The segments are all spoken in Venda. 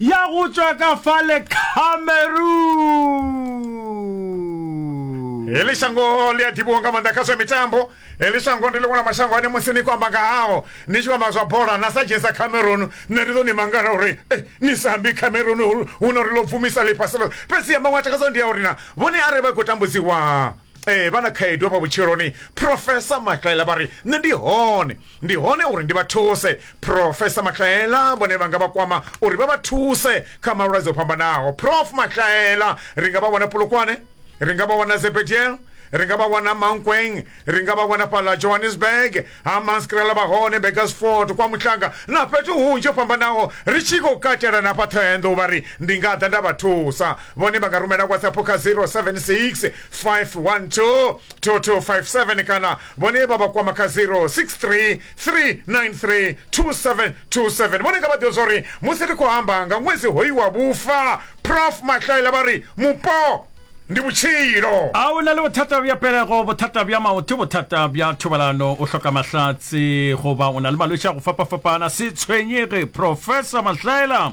ya go tšwa ka fale cameroon eli shango ḽi a ḓivhiwa nga maanḓa kha zwa mitambo eli shango ndi ḽiṅwe ḽa mashango ane musi ni khou amba nga hao ni tshi khou amba zwa bola na sa dzhenisa cameroon nṋe ndi ḓo ni mangala uri eh, ni sa ambi cameroon hu- hu no ri ḽo bvumisa ḽifhasi ḽo fhedzi ya maṅwe a takadzo ndi ya uri na vhone arali vha khou tambudziwa eh, vha na khaedu hafha vhutshiloni profesa makaela vha ri nṋe ndi hone ndi hone uri ndi vha thuse profesa mahlaela vhone vha nga vha kwama uri vha vha thuse kha malwadze o fhambanaho prof mahlaela ri nga vha wana pulukwane ri nga vha wana zebediel ri nga vha wana mankweng ri nga vha wana fhala johannesburg ha manskrela vha hone begasford kwa muhlanga na fhethu hunzhi ho fhambanaho ri tshi khou katela na fhaṱhoenḓo vha ri ndi nga ḓa nda vha thusa vhone vha nga rumela whatsapp kha 076 512 2257 kana vhone vha vha kwama kha 0633932727 vhone nga vha ḓivha zwauri musi ri khou amba nga ṅwedzi hoyu wa vhufa prof mahlaela vha ri mupo ndi vhutshilo a o na le bothata bja pelego bothata bja maoto bothata bja thobalano o hloka mahlatse goba o na le malwetši a go fapafapana se tshwenyege professor mahlaela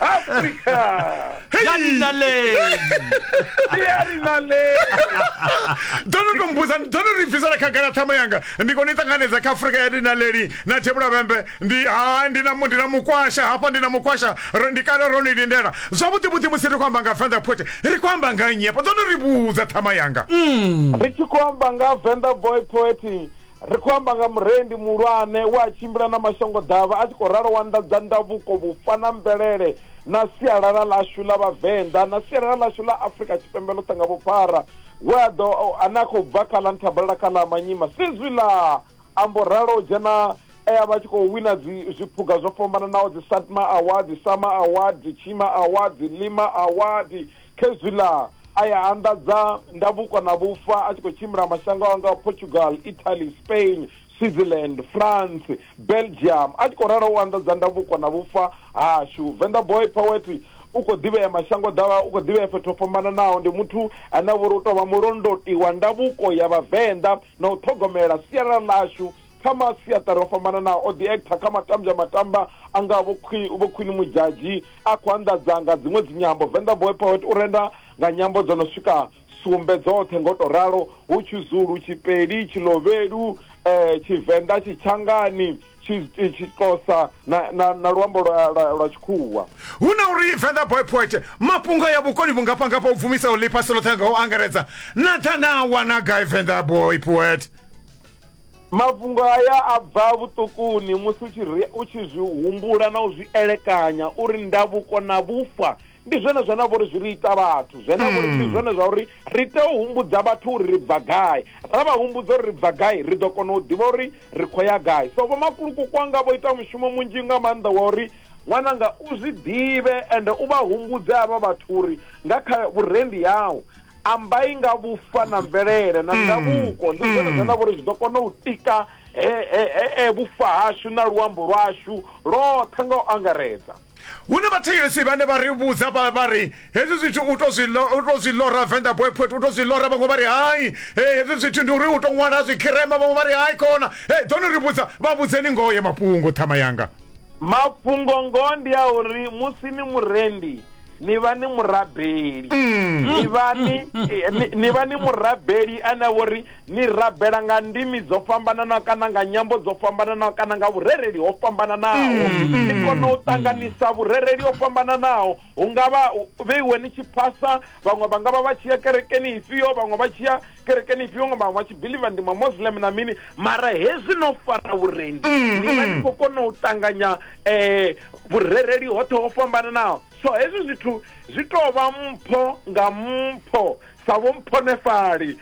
afrika ya dinaleng ke ya dinaleng ndo no to mbuza ndo no ri bvisela khagala ṱhama yanga ndi kone i ṱanganedza kha afurika ya dinaleli na thebula vhembe ndi ha ndi na mu- ndi na mukwasha hafha ndi na mukwasha ro- ndi kale ro ni lindela zwavhuḓi vhuḓi musi ri khou amba nga venḓa pote ri khou amba nga nnyi hafha ndo no ri vhudza ṱhama yanga ri tshi khou amba nga venḓa boy poet Ri khou amba nga murendi muhulwane we a tshimbila na mashangoḓavha a tshi khou ralo wa nḓadza ndavhuko, vhufa na mvelele na sialala ḽashu ḽa Vhavenḓa na sialala ḽashu ḽa Afrika Tshipembe ḽoṱhe nga vhuphara, we a ḓo ane a khou bva kha ḽa Nthabalala kha ḽa Manyima Sizwi ḽa ambo ralo u dzhena e a vha tshi khou wina dzi zwiphuga zwo fhambananaho dzi Satma Award, Sama Award, Tshima Award, Lima Award, Khezwiḽa a ya a anḓadza ndavhuko na vhufa a tshi khou tshimbila mashango a ngaho Portugal, Italy, Spain, Switzerland, France, Belgium. A tshi khou ralo u anḓadza ndavhuko na vhufa hashu. Venḓa Boy Poet u khou ḓivhea mashango ḓavha, u khou ḓivhea fhethu ho fhambananaho. Ndi muthu ane a vha uri u tou vha mulondoti wa ndavhuko ya Vhavenḓa na u ṱhogomela sialala ḽashu kha masiaṱari o fhambananaho o ḓi actor kha matambya matamba a nga vho khwini mudzhadzhi a khou anḓadza nga dziṅwe dzinyambo venḓa boy poet u renda nga nyambo dzo no swika sumbe dzoṱhe ngo to ralo hu tshizulu tshipeli tshilovhelu um eh, tshivenḓa tshitshangani tshixhosa na luambo lwa tshikhuwa hu na uri venḓa boy poet mafhungo ya vhukoni vhungafhangafha u bvumisaho ḽifhasi ḽoṱhe nga u angaredza na ḓa na wana gai venḓa boy poet mafhungo aya a bva vhuṱukuni musi u tshi u tshi zwi humbula na u zwi elekanya uri ndavhuko na vhufa ndi zwone zwa na vhori zwi ri ita vhathu zwe na vhori ndi hmm. zwone zwa uri ri tea u humbudza vhathu uri ri bva gai ra vha humbudza uri ri bva gai ri ḓo kona u ḓivha uri ri khou ya gai so vhomakuluku kwanga vho ita mushumo munzhi nga maanḓa wa uri ṅwananga u zwi ḓivhe ende u vha humbudze avha vhathu uri nga kha vhurendi yau ambai nga vhufa na mvelele na ndavhuko ndi zwone zwine nda vhori zwi ḓo kona u tika he- he- he- he vhufa hashu na luambo lwashu lwoṱhe nga u angaredza hu na vhathetshelesi vhane vha ri vhudza vha vha ri hezwi zwithu u to zwi lo- u to zwi lora venḓa boy poet u to zwi lora vhaṅwe vha ri hai hey, hezwi zwithu ndi uri u to ṅwala zwikhirema vhaṅwe vha ri hai khona hey, ḓo ni ri vhudza vha vhudzeni ngoho ya mafhungo ṱhama yanga mafhungo ngoho ndi a uri musi ni murendi ni vha ni murabeli mm. ni vha ni eh, ni vha ni murabeli ane vho ri ni rabela nga ndimi dzo fhambananaho kana nga nyambo dzo fhambananaho kana nga vhurereli ho fhambananaho mm, mm. ni kona u ṱanganisa vhurereli ho fhambananaho hu nga vha vheiwe ni tshi phasa vhaṅwe vha nga vha vha tshi ya kerekeni ifhio vhaṅwe vha tshi ya kerekeni ifhio nga vhaṅwe vha tshi biliva ndi mamoslem na mini mara hezwi no fara vhurendi mm, ni vha ni mm. khou kona u ṱanganya um eh, vhurereli hoṱhe ho fhambananaho so hezwi zwithu zwi tou vha mpho nga mpho sa vho mphonefhali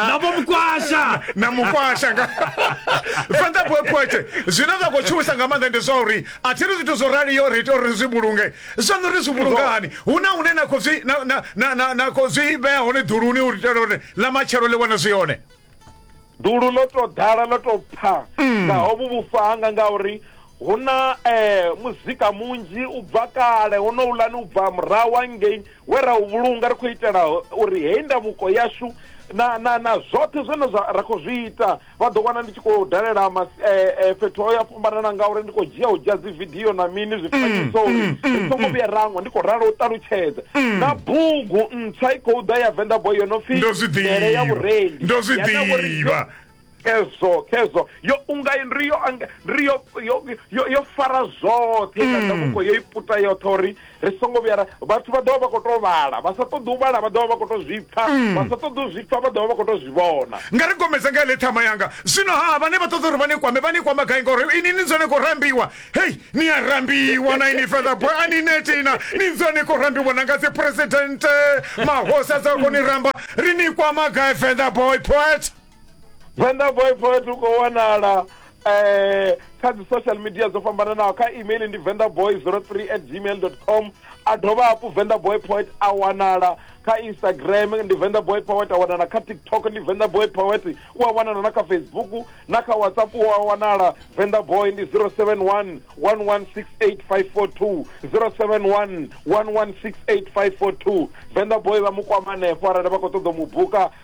na vho mukwasha na mukwasha nga fhedza pwephwete zwine zwa khou tshuwisa nga maanḓa ndi zwa uri a thi ri zwithu zwo raliyo ri ita uri ri zwi vhulunge zwaṋu ri zwi vhulungani hu na hune na khou zwi na- na- na- na- na khou zwi vhea hone ḓuluni u itela uri ḽa matshelo ḽi wane zwi hone dulu ḽo to ḓala ḽo to pfa mm. nga hovhu vhufa hanga ngauri hu na eh, muzika munzhi u bva kale honouḽani u bva murahu angei we ra u vhulunga ri khou itela uri heyi ndavuko yashu na na na zwoṱhe zwine ra khou zwi ita vha ḓo wana ndi tshi khou dalela eh, eh, fhethu ho ya fhambanana ngauri ndi khou dzhia u dzhia dzividio na mini zwifanyiso uri mm, mm, ri songo mm. vhuya rangwa ndi khou ralo u ṱalutshedza na bugu ntswa i khou ḓa ya venḓa boy yo no pfi mele ya vhurendi ndo zwi ḓivha kezo kezo yo unga ri yo ri yo yo yo fara zwoṱhe kana mm. muko yo iputa yoṱhe uri ri songo vhuya ra vhathu vha ḓovha vha khou tou vhala vha sa ṱoḓi u vhala vha ḓovha vha khou tou zwi pfa mm. vha sa ṱoḓi u zwi pfa vha ḓovha vha khou tou zwi vhona nga ri gomedza nga ile ṱhama yanga zwino ha vhane vha ṱoḓa uri vha ni kwame vha ni kwama gai ngauri ini ni dzone khou rambiwa hei ni a rambiwa na ini further boy a ni netina ni dzone khou rambiwa na nga dzi president mahosa dza khou ni ramba ri ni kwama gai further boy poet venḓa boyfriend u khou wanala eh kha dzi social media dzo fhambananaho kha email ndi vendaboy 03 at gmail dot com a dovha hafhu vendaboy poet a wanala kha instagram ndi vendaboy poet a wanala kha tiktok ndi vendaboy poet u a wanala na kha facebook na kha whatsapp u a wanala vendaboy ndi 071 1168542 071 1168542 vendaboy vha mu kwama hanefho arali vha khou ṱoḓa mu buka